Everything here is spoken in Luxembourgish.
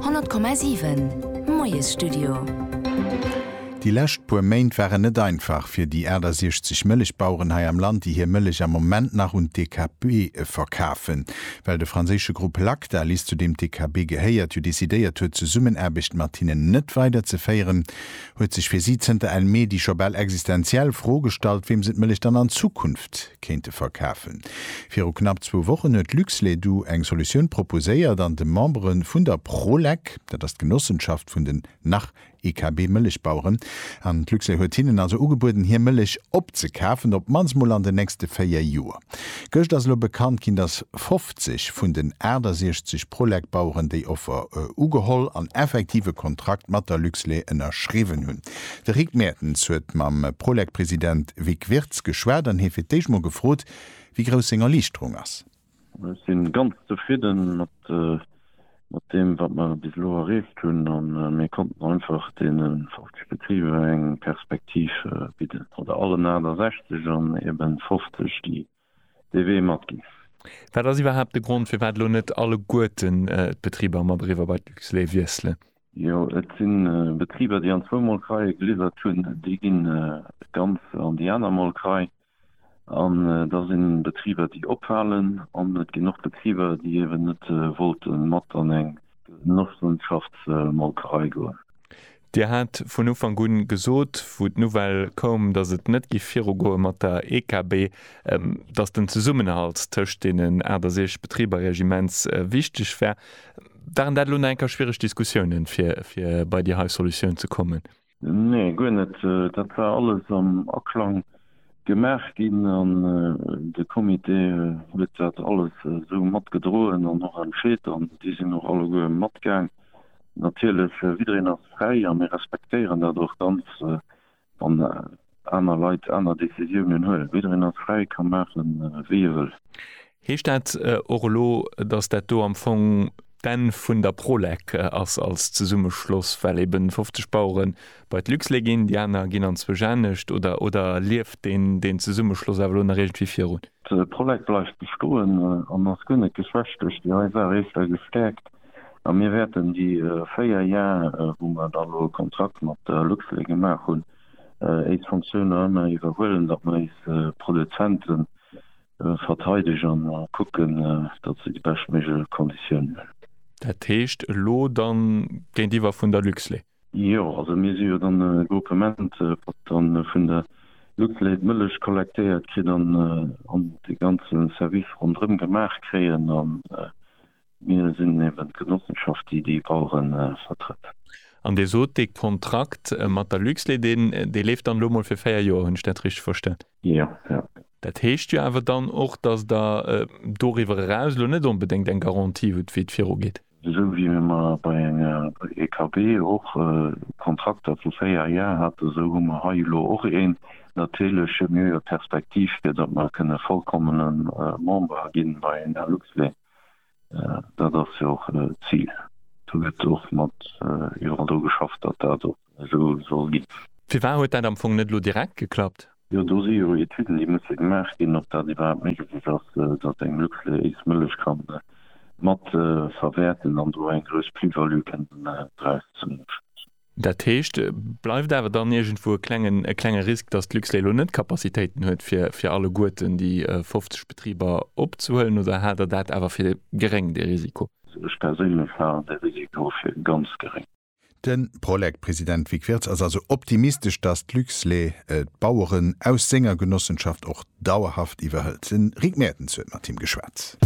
100,7 Moiesstudio. Déi lescht puer Méint waren net einfach fir déi 68 Mëllechbaueren hei am Land, déi hir Mëllech am Moment nach un d'DKB verkafen. Well de franséische Grupp Lactalis, zu deem d'DKB gehéiert, jo decidéiert huet, d'Zesummenaarbecht mat hinnen net weiderzeféieren, huet sech fir si zënter Enn Mee déi scho bal existenziell Fro gestallt, weem se d'Mëllech dann an Zukunft kéinte verkafen. Viru knapp zwou Wochen huet Luxledu eng Solutioun proposéiert an de Membere vun der Prolec, dat ass d'Genossenschaft vun den Nach-IKB-Mëllechbaueren, an d'Luxlait huet hinnen also ugebueden, hir Mëllech opzekafen, op d'mannst mol an den nächste véier Joer. Gëscht ass elo bekannt ginn, dass 50 vun den 68 Prolec-Baueren déi Offer ugeholl an effektiv e Kontrakt mat der Luxlait ënnerschriwwen hunn. De Rick Mertens huet mam Prolec-President Vic Wirtz geschwat an hie fir d'éischt mol gefrot, wéi grouss seng Erliichterung ass. Ech si ganz zefridde mat deem, wat mer bis elo erreecht hunn a mir konnten einfach deene 50 Betriber eng Perspektiv bidden, oder allen 68 an eben 50, déi dee Wee matginn. Wat ass iwwerhaapt de Grond, firwat elo net alleguerten d'Betriber mat eriwwer bei d'Luxlait wiesselen? Jo, et si Betriber, déi an zwou Molkereie geliwwert hunn, déi gi ganz an déi aner Molkerei. An da si Betriber, déi ophalen. An et ginn och Betriber, déi eeben net wollte mat an eng Genossenschaftsmolkerei goen. Dir hat vun Ufank un gesot, wou d'Nouvelle koum, dass et net giff viru goe mat der EKB, dass den Zesummenhalt tëscht deenen 68 Betriber immens wichteg wär. Waren dat elo nach eng Kéier schwiereg Diskussiounen, fir bei déi hei Solutioun ze kommen? Nee, guer net. Dat war alles am Aklang gemaach ginn an de Comité huet dat alles esou matgedroen an och entscheet an déi sinn och alleguer matgaang. Natierlech, jiddereen ass fräi a mir respektéieren dat och ganz, wann aner Leit aner Decisiounen huelen. Jiddereen ass fräi, ka maache wéi e wëll. Heescht dat och elo, datt dat do am Fong d'Enn vun der Prolec ass als Zesummeschloss, well eben 50 Bauere bei d'Luxlait ginn, déi aner ginn an zwou Janecht? Oder, oder lieft deen Zesummeschloss awer elo nach iergendwéi virun? D'Prolec bleift bestoen an ass guer net geschwächt duerch déi nei Saach, eeschter gestäerkt. A mir wäerten déi véier Jar, wou mer dann elo e Kontrakt mat der Luxlait gemaach hunn, éis Funktiounen ëmmer iwwerhuelen, datt mer éis Produzente verteidegen a kucken, datt se déi beschtméiglech Konditiounen hunn. Dat heescht elo dann géintiwwer vun der Luxlait? Jo, also mir si jo dann e Gruppement, wat dann vun der Luxlait d'Mëllech kollektéiert kritt an dee ganze Service ronderëm gemaach kréien. Mir sinn eben d'Genossenschaft, déi déi Baueren vertrëtt. An Dir sot, dee Kontrakt mat der Luxlait, deen, dee leeft dann elo emol fir véier Joer. Hunn ech dat richteg verstan? Jo, jo. Dat heescht jo awer dann och, dass Der doriwwer eraus elo net onbedéngt eng Garantie hutt, wéi et virugeet. Esou wéi mir mar bei enger EKB och Kontrakter vu véier Jar haten, esou hu mer hei elo och een. Natierlech hu mir jo Perspektiv, fir datt mer kënne vollkommene Member ginn bei enger Luxlait. Dat ass jo och d'Zil. Do gëtt och mat iwwerall dru geschafft, datt dat och esou soll ginn. Firwat huet dat am Fong net elo direkt geklappt? Jo, do si jo Etüden, déi musse gemaach ginn, ob dat iwwerhaapt méiglech ass, datt eng Luxlait Mëllech ka matverwäerten an do eng grouss Plus-value kënnen draus zéien. Dat heescht, bleift awer dann iergendwou e klengen, e klenge Risk, dass d'Luxlait elo net d'Capacitéiten huet, fir, fir alleguerten déi 50 Betriber opzehuelen? Oder haalt Der dat awer fir geréng, dee Risiko? Ech perséinlech halen dee Risiko fir ganz geréng. De Prolec-President Vic Wirtz ass also optimistesch, dass d'Luxlait d'Baueren aus senger Genossenschaft och dauerhaft iwwerhëlt. Den Rick Mertens huet mat him geschwat.